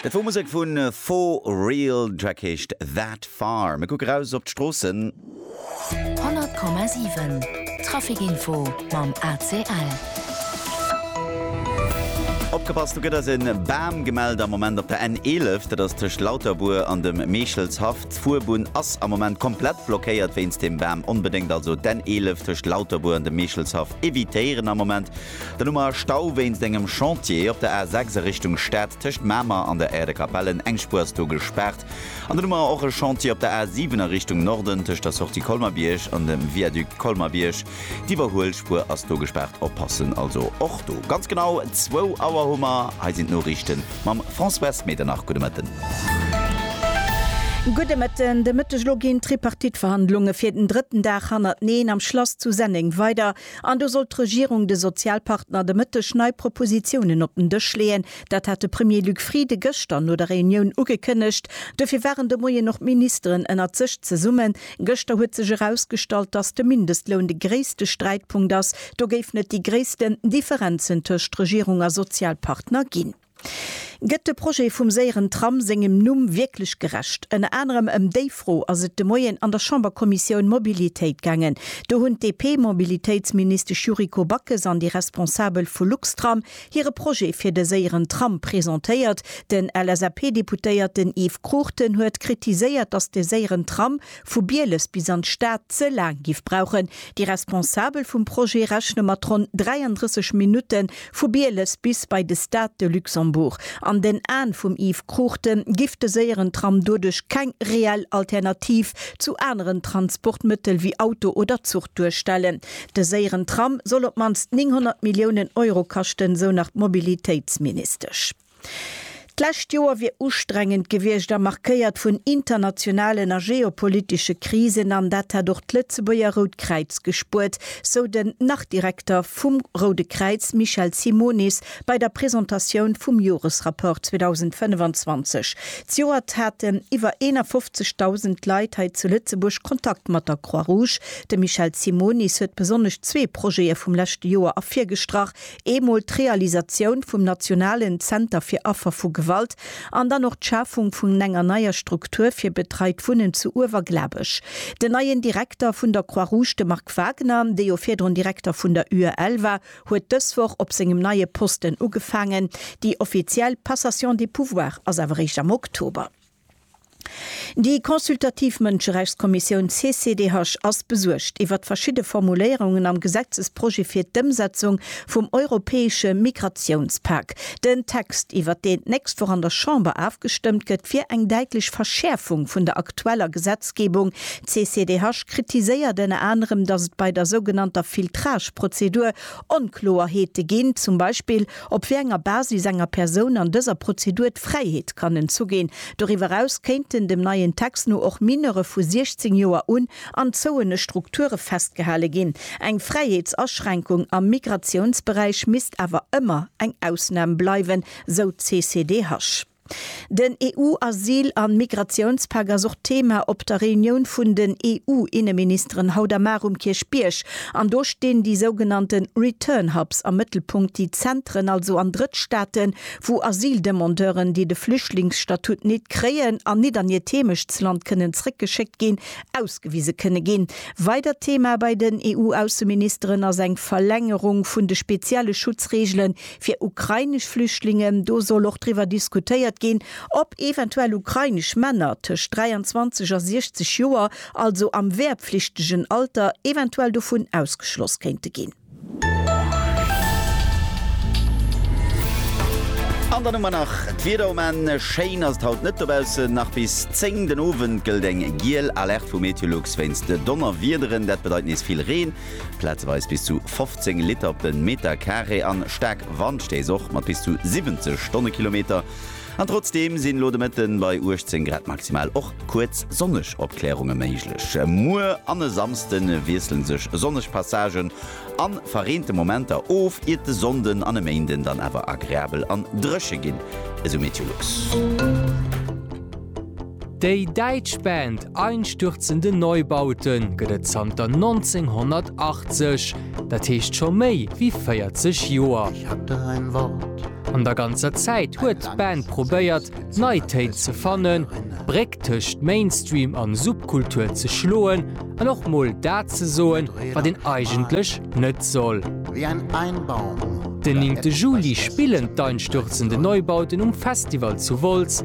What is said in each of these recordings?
De Faux Musek vu Faux Real, Track heescht That Far. Mir kucke raus op d'Stroossen. 100,7 Traficinfo mam ACL. Opgepasst, do gëtt eis e Bam gemellt am Moment op der N11. Dat ass tëscht Lauterbuer an dem Meechelshaff. D'Fuerbunn ass am Moment komplett blockéiert wéinst deem Bam. Onbedéngt also d'N11 tëscht Lauterbuer an dem Meechelshaff evitéieren am Moment. Den Noumer Stau wéinst engem Chantier op der A6 a Richtung Stad tëscht Mamer an der Aire de Capellen, eng Spuer ass do gespaart. An den Noumer och e Chantier op der A7 a Richtung Norden tëscht der Sortie Colmer-Bierg an dem Viaduc Colmer-Bierg. D'Iwwerhuelspuer ass do gespaart, oppassen also och do. Ganz genau zwou Auer hu mer. Hei sinn d'Noriichten mam Françoise Medernach. Gudde Mëtten. Gudde Mëtten. De Mëtteg elo ginn d'Tripartite-Verhandlunge fir den drëtten Dag hannerteneen am Schlass zu Senneng weider. An do sollt d'Regierung de Sozialpartner de Mëtteg nei Propositionen op den Dësch leeën. Dat hat de Premier Luc Frieden gëschter no der Reunioun ugekënnegt. Dofir waren de Moien och d'Ministeren ënnert sech zesummen. Gëschter huet sech erausgestallt, dass de Mindestloun de gréisste Sträitpunkt ass. Do géif net déi gréissten Differenzen tëscht Regierung a Sozialpartner ginn. Gëtt de Projet vum séieren Tram sengem Numm wierklech gerecht? Ënner anerem ëm déi Fro ass et de Moien an der Chamberkommissioun Mobilitéit gaangen. Do hunn d'DP-Mobilitéitsministesch Yuriko Backes an déi Responsabel vu Luxtram hire Projet fir de séieren Tram presentéiert. Den LSAP-Deputéierten Yves Cruchten huet kritiséiert, datt de séieren Tram vu Bieles bis an d'Stad ze laang giff brauchen. Déi Responsabel vum Projet rechne mat ronn 33 Minutten vu Bieles bis bei de Stade de Luxembourg. An den Aen vum Yves Cruchten giff de séieren Tram doduerch keng reell Alternativ zu aneren Transportmëttel wéi Auto oder Zuch duerstellen. De séieren Tram soll op d'mannst 900 Milliounen Euro kaschten, sou nach d'Mobilitéitsministesch. D'lescht Joer wier ustrengend gewiescht a markéiert vun internationalen a geopolitesche Krisen an dat hätt och d'Lëtzebuerger Rout Kräiz gespuert, sou den Nach-Direkter vum Roude Kräiz Michel Simonis bei der Presentatioun vum Joresrapport 2025. Zejoert haten iwwer 51.000 Leit hei zu Lëtzebuerg Kontakt mat der Croix-Rouge. De Michel Simonis huet besonnesch zwee Projete vum leschte Joer ervirgestrach, Eemol d'Realisatioun vum nationalen Zenter fir Affer vu Gewalt an dann och d'Schafung vun enger neier Struktur fir betreit Wunnen zu Uewerglabech. Den neien Direkter vun der Croix Rouge, de Marc Wagner, dee jo virdrun Direkter vun der UEL war, huet dës Woch op sengem neie Posten ugefaangen. Déi offiziell Passation des pouvoirs ass awer réischt am Oktober. Déi consultativ Mënscherechtskommissioun CCDH ass besuergt iwwert verschidde Formuléierungen am Gesetzesprojet fir d'Ëmsetzung vum europäesche Migratiounspak. Den Text, iwwert deen d'nächst Woch an der Chamber afgestëmmt gëtt, wier eng däitlech Verschäerfung vun der aktueller Gesetzgebung. D'CCDH kritiséiert ënner anerem, datt et bei der sougenannter Filtrage-Prozedur Onkloerheete ginn, zum Beispill op wéi enger Basis enger Persoun an dëser Prozedur d'Fräiheet kann entzu ginn. Doriwwer eraus kéinten dem neien Text no och Mineure vu 16 Joer un an zouene Strukture festgehale ginn. Eng Fräiheetsaschränkung am Migratiounsberäich misst awer ëmmer eng Ausnam bleiwen, sou d'CCDH. Den EU-Asyl an Migratiounspak ass och Thema op der Reunioun vun den EU-Inneministeren haut a mar um Kierchbierg. An do stinn déi sougenannte Return Hubs am Mëttelpunkt, déi Zentren also an Drëttstaaten, wou Asyldemandeuren, déi de Flüchtlingsstatut nit kréien an nit an hiert Heemechtsland kënnen zréckgeschéckt ginn, ausgewise kënne ginn. Weidert Thema bei den EU-Ausseministeren ass eng Verlängerung vun de spezielle Schutzreegelen Fir ukrainesch Flüchtlingen, do soll och driwwer diskutéiert ginn, ob eventuell ukrainesch Männer tëscht 23 a 60 Joer, also am wehrpflichtegen Alter, eventuell dovun ausgeschloss kéinte ginn. An dann hu mer nach d'Wieder um Enn. Schéin ass et haut net dobaussen. Nach bis 10 den Owend gëllt eng giel Alerte vu Meteolux wéinst Donnerwiederen. Dat bedeit nees vill Reen. Plazeweis bis zu 15 Liter op den Meter Carré an staark Wandstéiss, och mat bis zu 70 Stonnekilometer. An trotzdeem sinn lo de Mëtten bei 18 Grad maximal och kuerz sonneg Opkläerunge méiglech. Muer an e Samsden wiesselen sech sonneg Passagen an verreente Momenter of, iert de Sonnden an e Méinden dann awer agreabel an dréche ginn, esou Meteolux. Déi däitsch Band Einstürzende Neubauten gëtt et zanter 1980, dat heescht scho méi wéi 40 Joer. An der ganzer Zäit huet d'Band probéiert, nei Téin ze fannen, d'Bréck tëscht Mainstream an Subkultur ze schloen an och mol dat ze soen, wat een eigentlech net soll. Den 9. Juli spillen d'Einstürzende Neubauten um Festival zu Wolz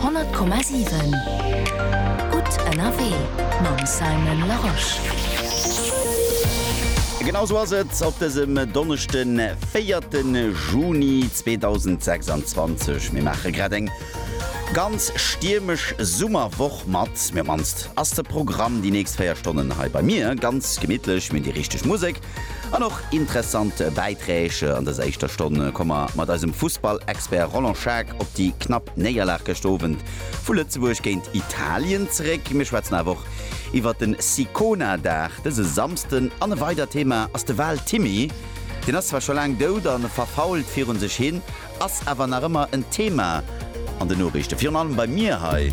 100,7 Gutt ënnerwee mam Simon Larosche. Genau sou ass et op dësem Donneschden, 4 de Juni 2026. Mir maache grad eng ganz stiermesch Summerwoch mat. Mee op mannst ass de Programm déi nächst 4 Stonnen hei bei mir ganz gemittlech. Mir hunn déi richteg Musek An och interessant Bäiträg. An dëser éischter Stonn komme mer mat eisem Fussball-Expert Roland Schaack op déi knapp Néierlag gëscht Owend vu Lëtzebuerg géint Italien zeréck. Mir schwätzen awer och iwwer de Sicona-Dag dëse Samsden. An e weidert Thema ass de Wal Timmy. Deen ass zwar scho laang dout a verfault virun sech hin, ass awer nach ëmmer en Thema an den Noriichten, virun allem bei mir hei.